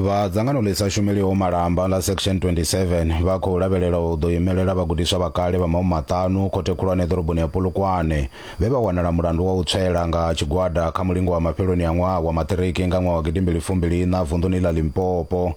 vha dzangano ḽi sa shumeliho malamba ḽa section 27 vha khou lavhelela u ḓo imelela vhagudiswa vha kale vha maumi maṱanu khothe khulwane ḓoroboni ya polokwane vhe vha wanala mulandu wa u tswela nga tshigwada kha mulingo wa mafheloni a ṅwaha wa maṱiriki nga ṅwaha wa gidimbili fumbili ina vunḓuni ḽa limpopo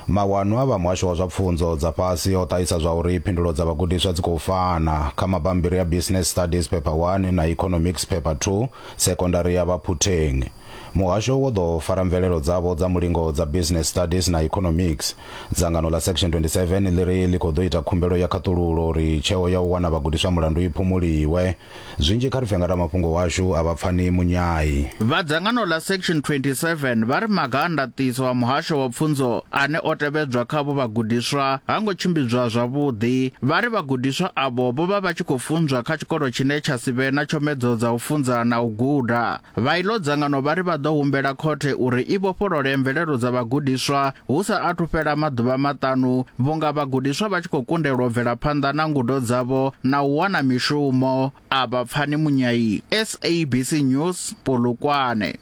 Mawanwa a vha Muhasho wa zwa Pfunzo dza Fhasi o ṱahisa zwa uri phindulo dza vhagudiswa dzi khou fana. Kha mabammbiri a Business Studies Phepha 1 na Economics Phepha 2, Sekondari ya Baphutheng. Muhasho wo ḓo fara mvelelo dzavho dza mulingo dza Business Studies na Economics. Dzangano ḽa Section 27 ḽi ri ḽi khou ḓo ita khumbelo ya khaṱululo uri tsheo ya u wana vhagudiswa mulandu i phumuliwe. Zwinzhi kha ri pfe nga ramafhungo washu a vha pfani munyai. Vha dzangano ḽa Section 27 vha ri maga a ndaṱiso a muhasho wa pfunzo ane o tevhedzwa kha avho vhagudiswa ha ngo tshimbidzwa zwavhuḓi. Vha ri vhagudiswa avho vho vha vha tshi khou funzwa kha tshikolo tshine tsha si vhe na tshomedzo dza u funza na u guda. Vha iḽo dzangano vha ri vha ḓo humbela khothe uri i vhofholole mvelelo dza vhagudiswa hu sa athu fhela maḓuvha maṱanu vhunga vhagudiswa vha tshi khou kundelwa u bvela phanḓa na ngudo dzavho na u wana mishumo. A vha Pfani Munyai, SABC News, Polokwane.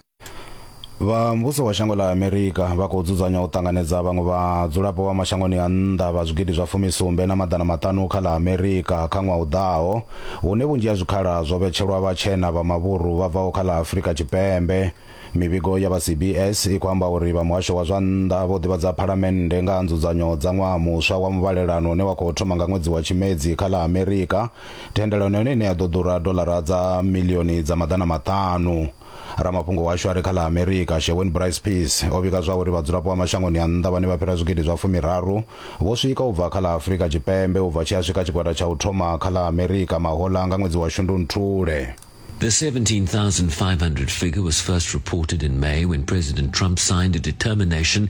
Vha muvhuso wa shango ḽa Amerika vha khou dzudzanya u ṱanganedza vhaṅwe vhadzulapo vha mashangoni a nnḓa vha zwigidi zwa fumi sumbe na maḓana maṱanu kha ḽa Amerika kha ṅwaha u ḓaho. hune vhunzhi ha zwikhala zwo vhetshelwa vhatshena vha mavhuru vha bvaho kha ḽa Afrika Tshipembe. Mivhigo ya vha CBS i khou amba uri vha muhasho wa zwa nnḓa vho ḓivhadza phalamennde nga ha nzudzanyo dza ṅwaha muswa wa muvhalelano une wa khou thoma nga ṅwedzi wa Tshimedzi kha ḽa Amerika, thendelano yone ine ya ḓo ḓura doḽara dza miḽioni dza maḓana maṱanu. ramafhungo washu a re kha ḽa amerika shewin brice peace o vhiga zwa uri vhadzulapo vha mashangoni a nnḓa vhane vha fhira zwigidi zwa fumiraru vho swika u bva kha ḽa afurika tshipembe u bva tshi a swika tshigwada tsha u thoma kha ḽa amerika mahola nga ṅwedzi wa shundunthule The 17,500 figure was first reported in May when President Trump signed a determination